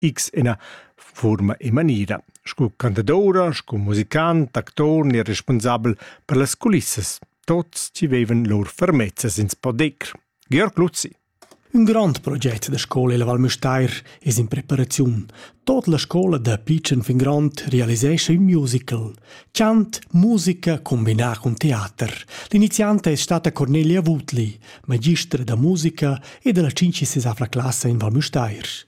X ina fuorma e maniera sco cantadoura, sco musicant, actur ni respunsabel per las culissas. Tots ci vevan lur fermezzas ins poder. Georg Luzzi Un grand proget da scola il Val Müstair es in preparaziun. Tot la scola da Pitschen fin Grond realisescha un musical. Chant, musica combinà con teater. L'iniziante è stata Cornelia Wutli, magistra da musica e della cincisesavla classe in Val Müstair.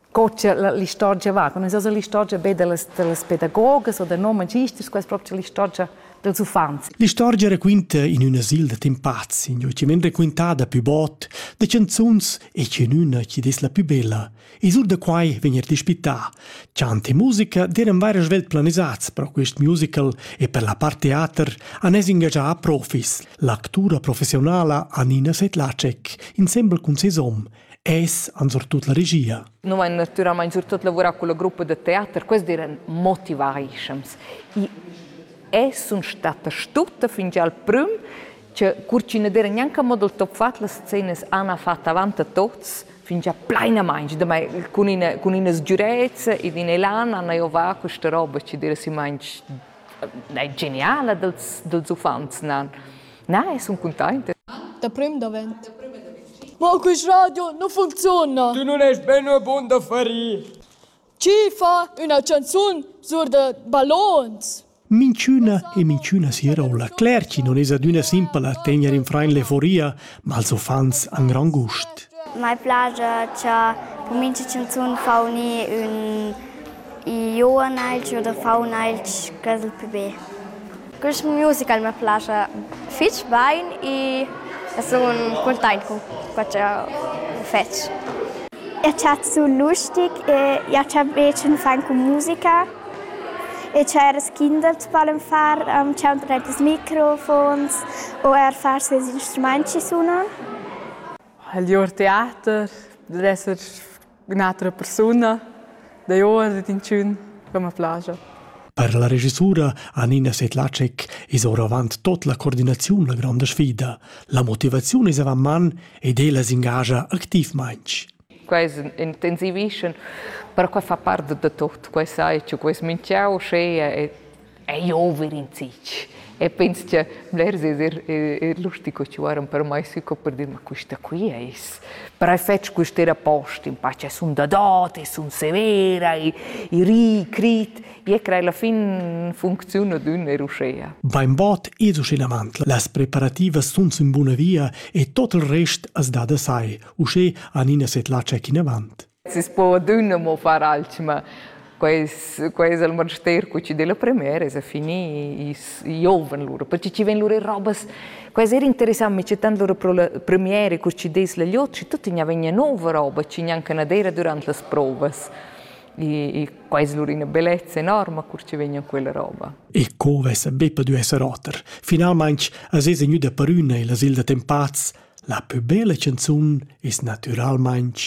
co cha l'istorgia va. Nun es l'istorgia be da las, da las pedagogas o da non magisters, quella es proprio l'istorgia dels uffants. L'istorgia raquinta in ün asil da temp pazzi, ün chiamen raquintada pü bot, da canzuns e che in üna chi des la pü bella. E sur da quai vegn er dispità. Chant e musica deran vaira svelt planisats pro quist musical e per la part teater han es ingagià profis. L'actura professionala Anina Setlacek, insembel cun ses hom, es an surtut la regia. Nu vain natüralmaing surtot lavurà culla gruppa da teater, quels diran motivaischems. I es sun statta stutta fingià al prüm che cur chi na d'era gnanca mo dal top fat las scenas han fat avant a tots fingià plainamaing, damai cun ina cun ina sgürezza ed in elan han eivà questa roba chi d'era simmainch na geniala dals dals uffants nan. Na, e sun cuntainta. Da prüm davent. Ma quist radio nu funziuna! Tu nun est be ün bun da ferir. Chi fa üna chanzun sur da ballons? Minchüna e minchüna sera ho la Claire chi non es adüna simpla a tegner in frain l'euforia, ma als uffants han grand gust. Mai plaja cha po mincha chanzun fa unir ün iona ailch oder fa un ailch ch'es il plü be. Quest musical mi plascha fitg bain e sun cuntaint cun co ch'eu fetsch. Eu chat sü lustig e jau chat be ch'ün fan cun musica e tscheiras Kindle t'pallen far, tschaunt retas microfons o eir far seis instrumaints chi sunan. Il teater dess esser Un'atra persuna da Joas ed inchün che ma plaja. Per la regisura Anina Sedlacek es oravant tot la coordinaziun la granda sfida. La motivaziun es avant man ed ella s'ingagia activmainch. Quels intensivischan, perque fa part da tot, quai sai, che quels minchiau schea e ei over in zitg. E pens che blers es er, er lustig co chuaran per mai sui co per dir ma questa qui eis. Per hai fetg quest'era post in pace sun da dot e sun severa e, e ri crit e crei la fin funziona d'ün er uschea. Bainbot es uschinavant las preparativas sun in buna via e tot il rest as da da sai, uschè an ina setlatscha in avant. Sis po adüna mo far alchüma. Quai es quai es il manster cu chi d'he la premera, es a finir, i giovan lura, perche chi vain lur robas. Quai es eir interessant, mi c'è tant lura pro la premiera cur chi dess la gliot, schi tuot gnà vegna nouva roba, chi gnanca na d'eira dürant las provas. E e quai es lura üna bellezza enorma cur chi vegna quella roba. E co vessa be pudü esser oter. Finalmaing as esa gnüda parüna illa Silda Tempaz. La pü bella chanzun es natüralmaing